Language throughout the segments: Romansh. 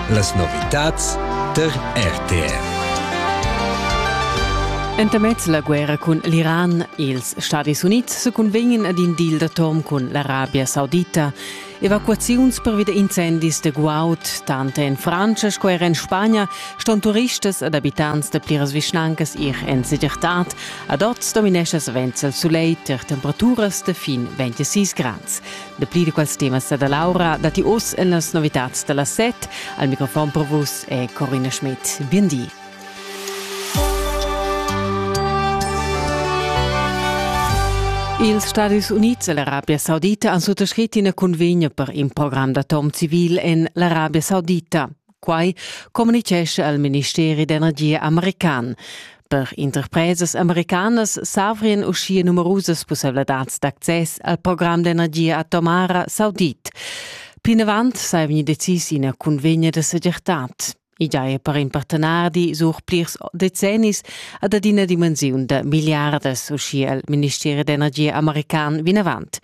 Las novitads tar RTR. Entamez la guerra cun l'Iran e ils Stadis Unids se cunvegnan ad in deal d'atom cun l'Arabia Saudita evacuaziuns pervi da incendis de guaud, tant en Francia sco er en Spagna ston turistas ed abitants da pliras vischnancas ir en segirtad. Ad oz dominescha savens il sulegl ter temperaturas de fin 26 grads. Dapli di quels temas da Laura datti oz en las novitads da las set. Al microfon per vus è Corina Schmidt. Bien di. Ils Stadis Unids e l'Arabia Saudita han suttascrit ina cunvegna per in program d'atom civil en l'Arabia Saudita. Quai communitgescha il ministeri d'energia american. Per interpresas americanas s'avrian uschia numerusas pussaivladads d'access al program d'energia atomara saudit. Plinavant sei vegni decis ina cunvegna da segirtad. I giaja per in partenari sur plirs decennis ad adina dimensiun da miliardas, uschia il ministeri d'energia american vinavant.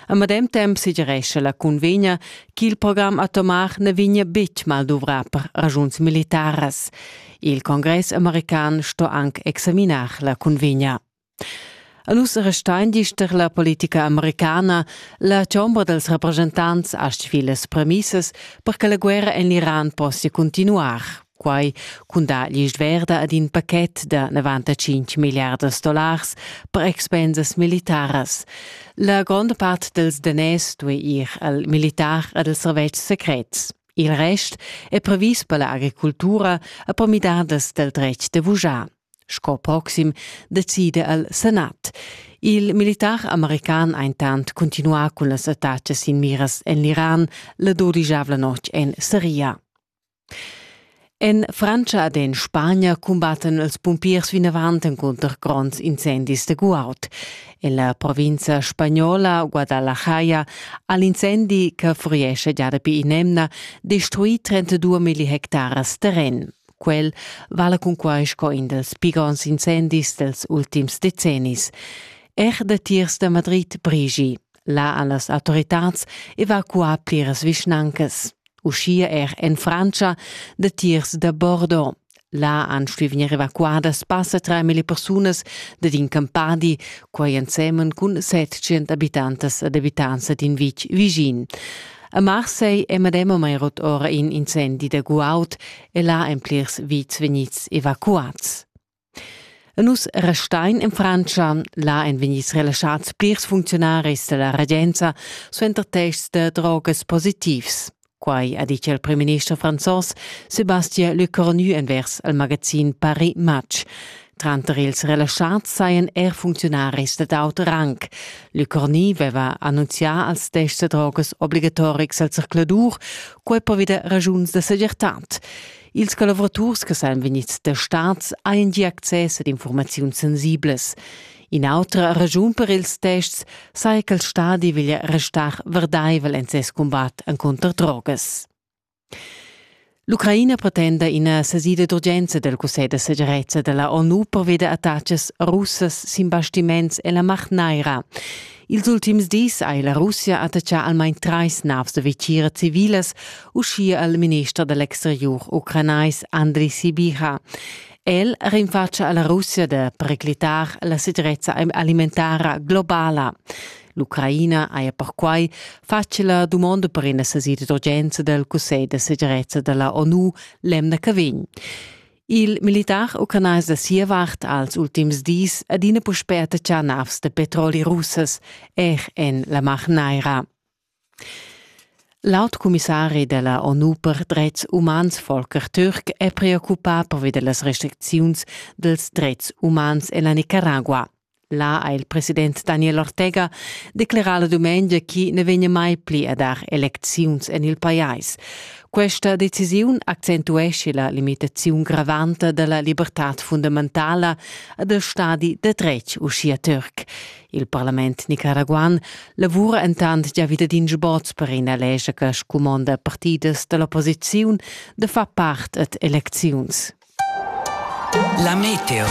A medem temp sugerescha la cunvegna ch'il program atomar ne vegnia betg malduvrà per ragiuns militaras. Il congress american sto anc examinar la cunvegna. A nus restein dister la politica americana. La chombra dels representants astg filas premissas per che la guerra en l'Iran possia continuar. Quai cun dar l'isch verda ad in pachet da 95 milliardas dollars per expensas militaras. La gronda part dels daners due ir al militar ed als servetschs secrets. Il rest è previs per l'agricultura e per midadas del dretg de vujar. Sco proxim decide al Senat. Il militar american intant continua cun las attacas in miras en l'Iran la dodigiavla notg en Siria. En Frantscha ed en Spagna cumbattan els pumpiers vinavant encunter gronds incendis da guaud. En la provinza spagnola Guadalajara ha l'incendi che furiescha gia dapi in'emna destruì 32 milli hectares terren. Quel vala cunquai sco in dals pli gronds incendis dels ultims decennis. Er datiers da Madrid brigi. Là han las autoritads evacuà pliras vischnancas. uschia er en Frantscha, datiers da Bordeaux. Là han stuì vegnir evacuadas passa 3.000 persunas dad in campadi, quai ensemen cun 700 abitantas ed abitanza d'in vitg vischin. A Marseille è medemamain rot ora in incendi da guaud e là èn plirs vits vegnids evacuads. Nus restain in Frantscha. Là èn vegnids relaschads plirs funcziunaris da la regenza suenter tests da drogas positivs. Quai ha ditg il primminister franzos Sébastien Lecornu envers il magazin Paris Match. Tranter ils relaschads sajan er funcziunaris dad aut rang. Lecornu aveva annunzià als tests da drogas obligatorics al zercladur, quai per vida ragiuns da segirtad. Ils collavuraturs che san vegnids testads hajan gia access ad informaziuns sensibles. In'autra raschun per ils tests saja che il stadi veglia restar verdaivel en ses cumbat encunter drogas. L'Ucraina pretenda ina sesida d'urgenza del Cussegl da segirezza della ONU pervia da attacas russas sin bastiments e la Mar Neira. Ils ultims dis ha la Russia attaccà almain trais navs da vitgira civilas, uschia il minister da l'exteriur ucranais Andriy Sibiha. El rinfatscha a la Russia da periclitar la segirezza alimentara globala. L'Ucraina haja perquai fatg la dumonda per ina sesida d'urgenza dal Cussegl da segirezza da la ONU l'emna che vegn. Il militar ucranais da sia vart als ultims dis adina puspè attacchà navs da petroli russas er en la Mar Naira. Laut commissari della ONU per dretgs umans Volker Türk è preoccupà pervi delle restriczioni dels dretgs umans en la Nicaragua. Là ha il president Daniel Ortega declerà la dumengia chi ne vegna mai pli a dar elecziuns en il pajais. Questa decisiun accentuesce la limitaziun gravanta della libertad fundamentala a del stadi de dretg uschia Türk. Il parlament nicaraguan lavura entant già wieder din sboz per ina lescha che scumonda partidas dell'opposiziun de far part ad elecziuns. La meteo.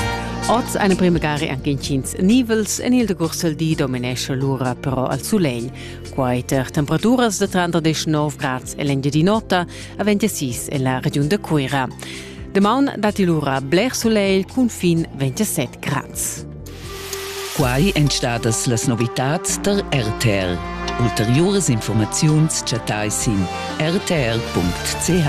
Oz eine primagari anche intgins nivels, en il decurs di dominesce l'ura però al sulegl. Quai per temperaturas de 39 grads e l'engiadin'ota, a 26 en la regiun de Cuira. Demaun dati l'ura bler sulegl cun fin 27 grads. Quai èn stadas las novitads der RTL. Ulteriores Informaziuns chattai sin rtl.ch.